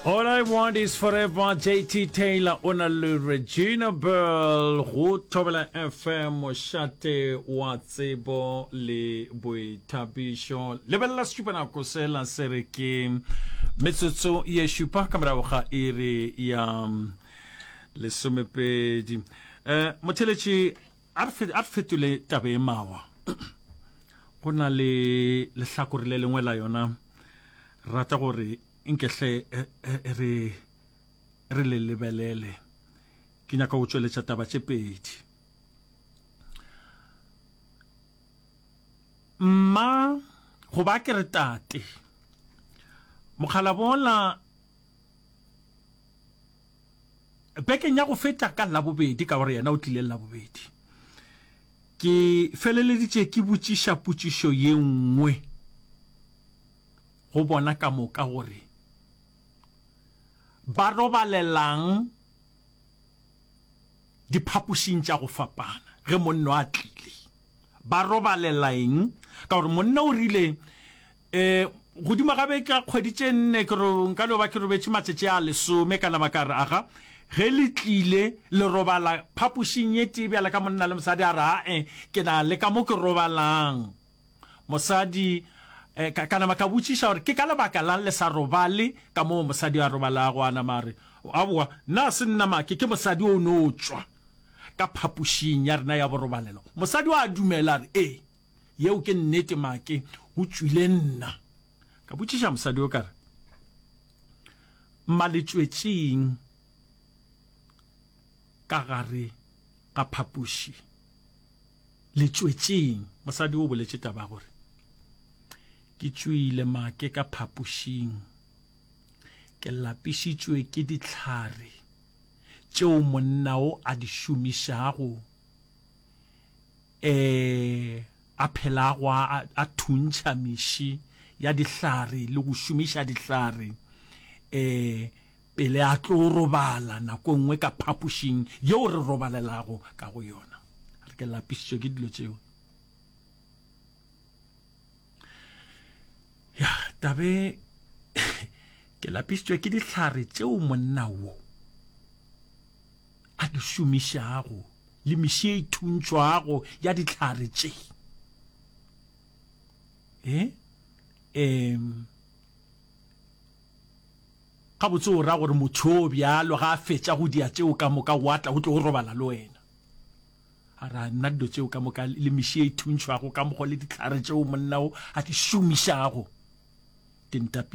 All I want is forever JT Taylor o na le Regina Bell go Thobela FM mošate wa tsebo le boithabišo lebelela setšupanako sela se re ke metsotso ye šupa ka morago ga iri ya lesomepedi um motheletši A re fetole taba e mawa. Go na le lehlakore le lengwe la yona rata gore nkehle re le lebelele. Ke nyaka go tšweletša taba tše pedi. Mma go ba ke re tate. Mokgalabola Bekeng ya go feta ka Labobedi, ka gore yena o tlile Labobedi, ke feleleditše ke botšiša potšišo ye nngwe go bona ka moka gore ba robalelang diphapošing tša go fapana ge monna a tlile. Ba robalela eng? Ka gore monna o rile, Ee, godimo ga beka kgwedi tše nne ke ro, nka no ba ke robetše matšatši a lesome, ka nama ka re, Aga, ge le tlile, le robala phapošing ye tee bjalo ka monna le mosadi? A re, A-e, ke na le ka mo ke robalang. Mosadi, eh, ka, ka nama ka botšiša gore ke ka lebaka la'ng le sa robale ka moo mosadi a robalago. A nama a re, Aowa, nna ga se nna make, ke mosadi o no tšwa ka phapošing ya rena ya borobalelo. Mosadi o a dumela, a re, Ee. Yeo ke nnete, make o tšwile nna. Ka botšiša mosadi yo ka re, Mma le tšwetšeng ka gare ga phapoši? Le tšwetšeng? Mosadi o boletše taba gore, Ke tšwile make ka phapošing. Ke lapišitšwe ke ditlhare tšeo monna o a di šomišago e a phelago a, a thuntšha meši ya dihlare le go šomiša dihlare e pele a tlo robala nako nngwe ka phapošing yeo re robalelago ka go yona re ke lapišitšwe ke dilo tšeo ya tabe ke lapišitšwe ke dihlare tšeo monna wo a di šomišago le miši e thuntšwago ya ditlhare tše e um gabotse o ra gore motho o bjalo ga a fetša go dia tšeo ka moka o atla o tlo o robala le wena a ra nna dilo tšeo ka moka le miši e thuntšhwago ka mokgo le ditlhare tšeo monna o a di šomišago ke ntapi